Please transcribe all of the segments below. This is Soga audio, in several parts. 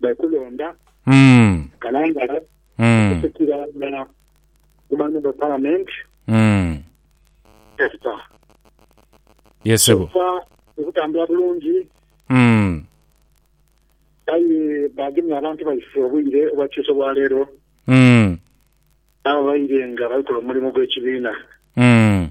baikulonda Mm. Kalangala Mm. okusikira nga ku Member of Parliament Mm. Esther. Yes, sebo. Kyokka tekutambula bulungi Mm. aye bagemye abantu baife obwire obwakyusa obwaleero Mm. n'ababaire nga bali kola omulimu gw'ekibiina. Mm.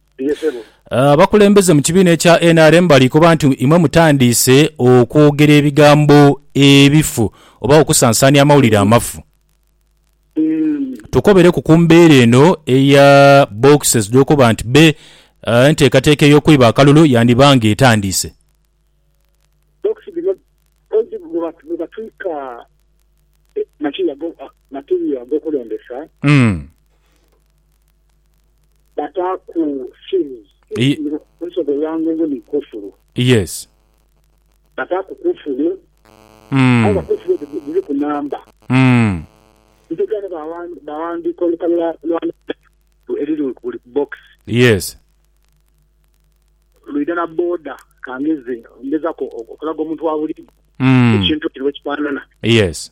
Abakulembeze mu kibiina ekya nrm bali koba nti imwe mutandiise okwogera ebigambo ebifu oba okusansaania amawulire amafu. Tukobereku ku mbeera eno eya boxes dh'okuba nti be enteekateeka ey'okwiba akalulu yandiba nga etandiise. Bokisi dhino kozzi bwe batwika matirio ag'okulembesa. bataaku sins, Ye- sins ensobi eya ngungu ni kufuru, Yes. bataaku kufuru, aye nga Mm. kufuru edho dhi- dhiriku namba. Mm. Ntegera ni bawa- bawandiika olukale lwa lwa Nabbi eriri ku buli bbokisi, Yes. lwidha na booda ka ngeze ngezaku okulaga omuntu wa buliidho Mm. ekintu kino bwe kifaanana. Yes.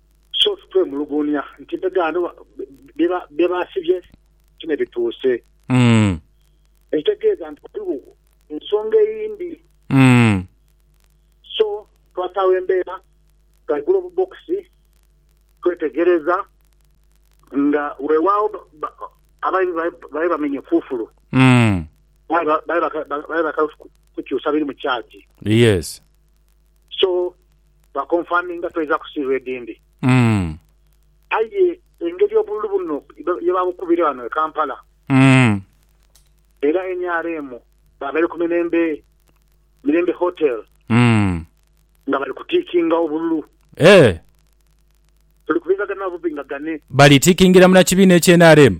So sikwemuluguunhia nti empegaano bye baasibye ti me bituuse. Ekitegeeza nti ghaligho ensonga eyindi. So twataagho embeera nga Glove Box twetegereza nga weewaawo abaidhi babaire bamenye kufulu aye babaire bakaali kukyusa biri mu kyagi. so ba confirminga toidha kusiirwa edindi. Aye engeri obululu buno ye babukubire ghano e Kampala era nrm babaire ku Mirembe Mirembe Hotel nga bali ku tikinga obululu tuli kubingagane na bubingagane. Bali tikingira mu na kibiina ekye nrm?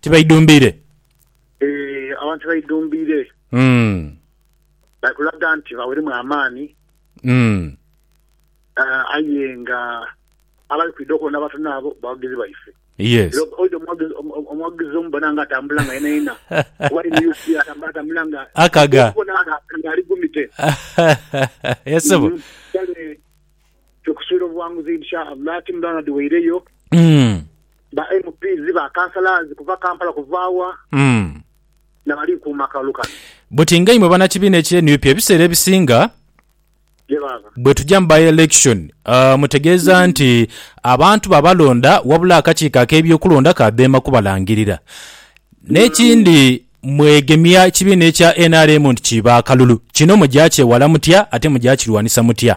tibaidhumbiire. Ee, abantu tibaidhumbiire. Mm. Bali kulaga nti baweremu amaani. Mm. Aa, aye nga abali kwidha okwona abatono abo bawagizi baife. Yes. Era oidha omuwagizi, omu, omuwagizi omubona nga atambula nga yenayena, oba ali mu UCA atambula, atambula nga, Akaga. okubona nga, nga ali gumite. Yes, ssebo. Mm, kale Tukusubira obuwanguzi Insha Allah Team Leonard weireyo Ba MPs ba councillors kuva Kampala kuva wa nabali kuuma akalulu kano. Buti nga imwe banakibiina ekye nup ebiseera ebisinga Ye baaba. bwetuja mu by election mutegeeza nti abantu babalonda wabula akakiiko akebyokulonda kadheema kubalangirira nekindi mwegemya kibiina ekya nrm nti kiiba akalulu kino mugya kyewala mutya ate mugya kirwanisa mutya?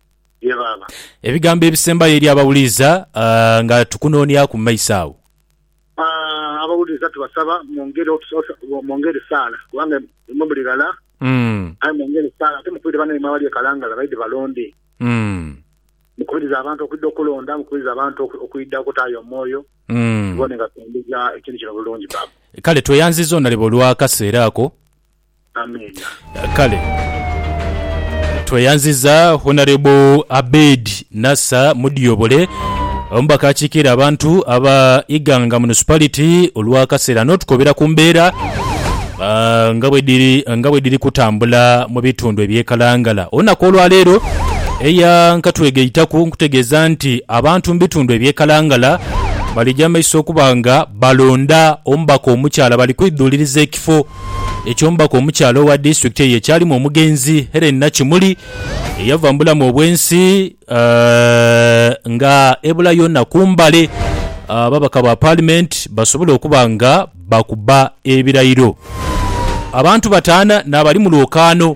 Ye Baaba. Ebigambo ebisembayo eri abawuliza nga tukunooniaku mu maiso agho. Abawuliza tubasaba mwongere saala kubanga imwe muli ghala, aye mwongere saala ate mukubire banaimwe abali e Kalangala baidhe balonde. Mukubirize abantu okwidha okulonda, mukubirize abantu okwidha okutaayo omwoyo tubone nga tutambuza ekintu kino bulungi Baaba. Kale tweyanziza Onalebo olw'akaseera ako. Amenha. Kale tweyanziza Honourable Abed Nasser Mudyobole omubaka akiikirira abantu aba Iganga Municipality olw'akaseera n'otukobera ku mbeera nga bwedhiri nga bwedhiri kutambula mu bitundu eby'e Kalangala. Olunaku olwaleero eya nkatwegaitaku nkutegeeza nti abantu mu bitundu eby'e Kalangala balija mu maiso okuba nga balonda omubaka omukyala bali kwidhuuliriza ekifo ekyo omubaka omukyala owa disitulikiti eyo ekyalimu omugenzi Hellen Nakimuli eyava mu bulamu obw'ensi nga ebulayo na ku mbale ababaka ba paalimenti basobole okuba nga bakuba ebirayiro. Abantu bataana n'abali mu lwokaano.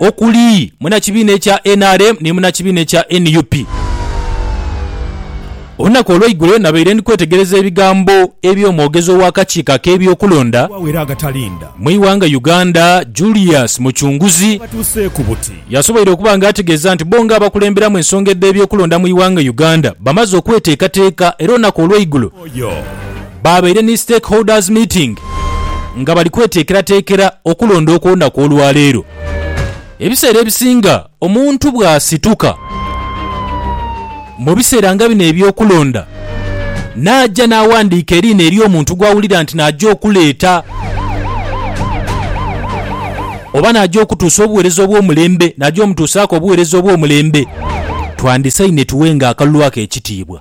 okuli munakibiina ekya nrm ni munakibiina ekya nup. Olunaku olweigulo nabaire ndi kwetegereza ebigambo eby'omwogezi ow'akakiiko ak'ebyokulonda mu ighanga Uganda Julius Mucunguzi yasoboire okuba nga ategeeza nti bo nga abakulemberamu ensonga edh'ebyokulonda mu ighanga Uganda bamaze okweteekateeka era olunaku olweigulo Baabaire ni stakeholders meeting nga bali kweteekerateekera okulonda okw'olunaku olwaleero. Ebiseera ebisinga omuntu bw'asituka mu biseera nga bino eby'okulonda n'aja n'awandiika eriina ery'omuntu gw'awulira nti n'aja okuleeta oba n'aja okutuusa obuweereza obw'omulembe, n'aja omutuusaaku obuweereza obw'omulembe, twandisaine tuwenga akalulu ako ekitiibwa.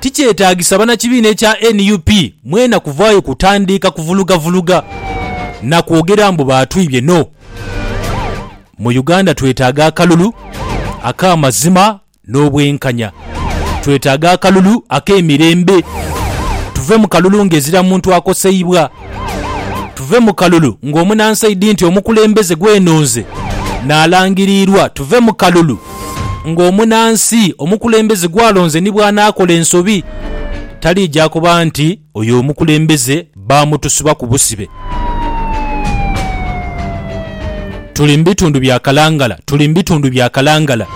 Tikyetaagisa bannakibiina ekya nup mwena kuvaayo kutandiika kuvulugavuluga na kwogera mbu baatwibye no. Mu Uganda twetaaga akalulu ak'amazima n'obwenkanya. Twetaaga akalulu ak'emirembe tuve mu kalulu ng'ezira muntu akoseibwa. Tuve mu kalulu ng'omunansaidi nti omukulembeze gwenonze nalangiriirwa Tuve mu kalulu ng'omunansi omukulembeze gwalonze ni bw'anaakola ensobi taliija kuba nti oyo omukulembeze baamutusibaku busibe. Tuli mu bitundu bya kalangala, tuli mu bitundu bya kalangala.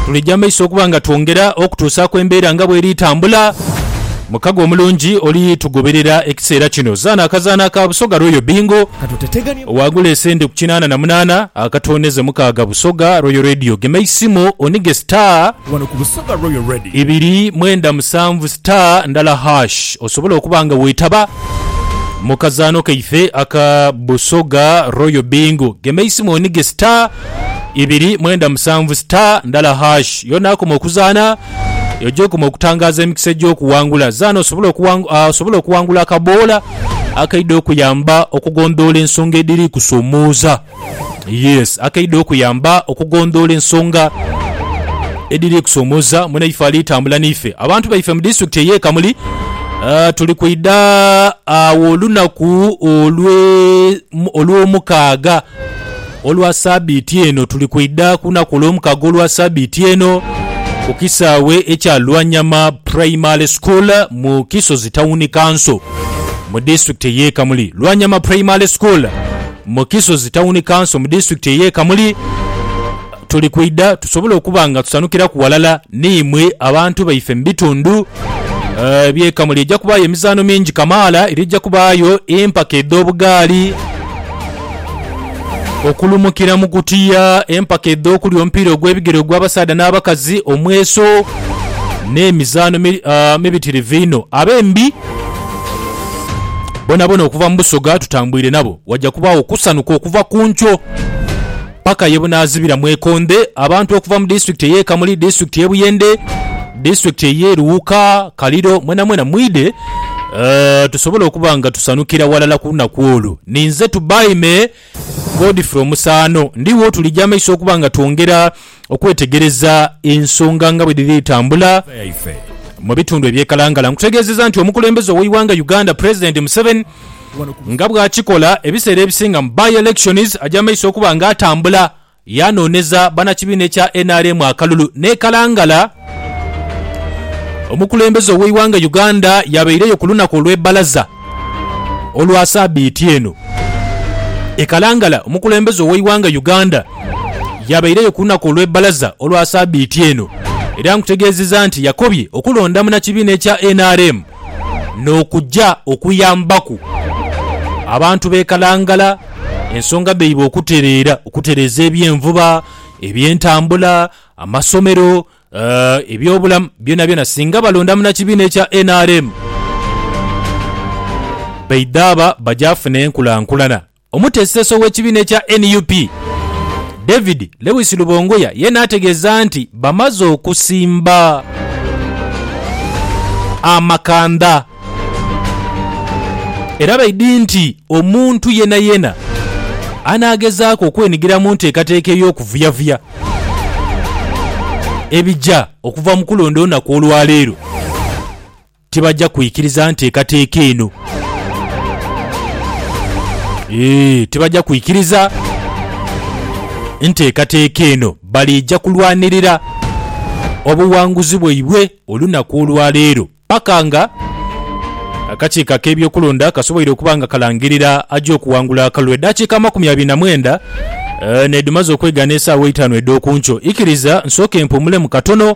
Tulija mu maiso okuba nga twongera okutuusaaku embeera nga bw'eri tambula. Mukago omulungi oli tugoberera ekiseera kino. Zaana akazaanho aka Busoga Royal Bingo. Waagula esente ku kinaana na munaana akatooneze mukaaga Busoga Royal Radio. Gema eisimu onige star. wano ku Busoga Royal Radio. Ibiri mwenda musanvu star ndala hash osobole okuba nga wetaba mu kazaano kaife aka Busoga Royal Bingo. Gema eisimu onige star ibiri mwenda musanvu star ndala hash y'onaakoma okuzaana eyo gy'okoma okutangaaza emikisa egy'okuwangula. Zaana osobole okuwang ah, osobole okuwangula akaboola akaidha okuyamba okugondhoola ensonga edhiri kusomooza. Yes, akeidha okuyamba okugondhoola ensonga edhiri kusoomoza mwenaife ali tambula naife. Abantu baife mu disitulikiti ey'e Kamuli tuli kwidha agho olunaku olw'omukaaga olwa sabiiti eno. Tuli kwidha ku lunaku olw'omukaaga olwa sabiiti eno ku kisaawe ekya Lwanyama Primary School mu Kisozi Tawuni Kanso mu disitulikiti ey'e Kamuli. Lwanyama Primary School. Mu Kisozi Tawuni Kanso mu disitulikiti ey'e Kamuli, tuli kwidha tusobole okuba nga tusanhukilaku ghalala ni imwe abantu baife mu bitundu eby'e Kamuli. Eja kubaayo emizaano mingi kamaala era eja kubaayo empaka edh'obugaali, okulumukira mu kutiya, empaka edh'okulya omupiira ogw'ebigere ogw'abasaadha n'abakazi, omweso n'emizaano mibitirivu inho. Abembi. Bonabona okuva mu Busoga tutambwire nabo, waja kubaawo okusanuka okuva ku nkyo paka ye bunaazibira mu Ekondhe. Abantu okuva mu disitulikiti ey'e Kamuli, disitulikiti y'e Buyende, disitulikiti ey'e Luuka, Kaliro, mwenamwena mwidhe tusobole okuba nga tusanukira ghalala ku lunaku olwo. Ninze Tubaime. Godfrey Omusaano, Ndi wo tulija amaiso okuba nga twongera okwetegereza ensonga nga bwe dhiri tambula mu bitundu eby'e Kalangala. Nkutegeezezza nti omukulembeze ow'eighanga Uganda Pulezidenti Museveni nga bw'akikola ebiseera ebisinga mu by-elections aja maiso okuba nga atambula Yaanooneza bannakibiina ekya nrm akalulu n'e Kalangala. Omukulembeze ow'eighanga Uganda yabaireyo ku lunaku olw'e Bbalaza olwa sabiiti eno. E Kalangala, omukulembeze ow'eighanga Uganda yabaireyo ku lunaku olw'e Bbalaza olwa sabiiti eno era nkutegeezizza nti yakobye okulonda munnakibiina ekya nrm, n'okuja okuyambaku abantu b'e Kalangala ensonga dhaibwe okutereera, okutereeza eby'envuba, eby'entambula, amasomero, eby'obulamu byonabyona singa balonda munakibiina ekya nrm baidha aba baja funa enkulankulana Omuteeseteesi ow'ekibiina ekya nup, David Lewis Lubongoya yeena ategeeza nti bamaze okusimba amakanda era baidhi nti omuntu yeenayeena anaagezaaku okwenigira mu nteekateeka ey'okuvuyavuya ebija okuva mu kulonda olunaku olwaleero. Tibaja kwikiriza nteekateeka eno. Eeh, tibaja kwikiriza nteekateeka eno. Baliija kulwanirira obuwanguzi bwaibwe olunaku olwa leero paka nga akakiiko ak'ebyokulonda kasoboire okuba nga kalangirira aja okuwangula akalulu. Edaakiika amakumi abiri na mwenda nedhimaze okwegaana esaawa eitaanu edh'oku nkyo. Ikiriza nsooke mpumulemu katono.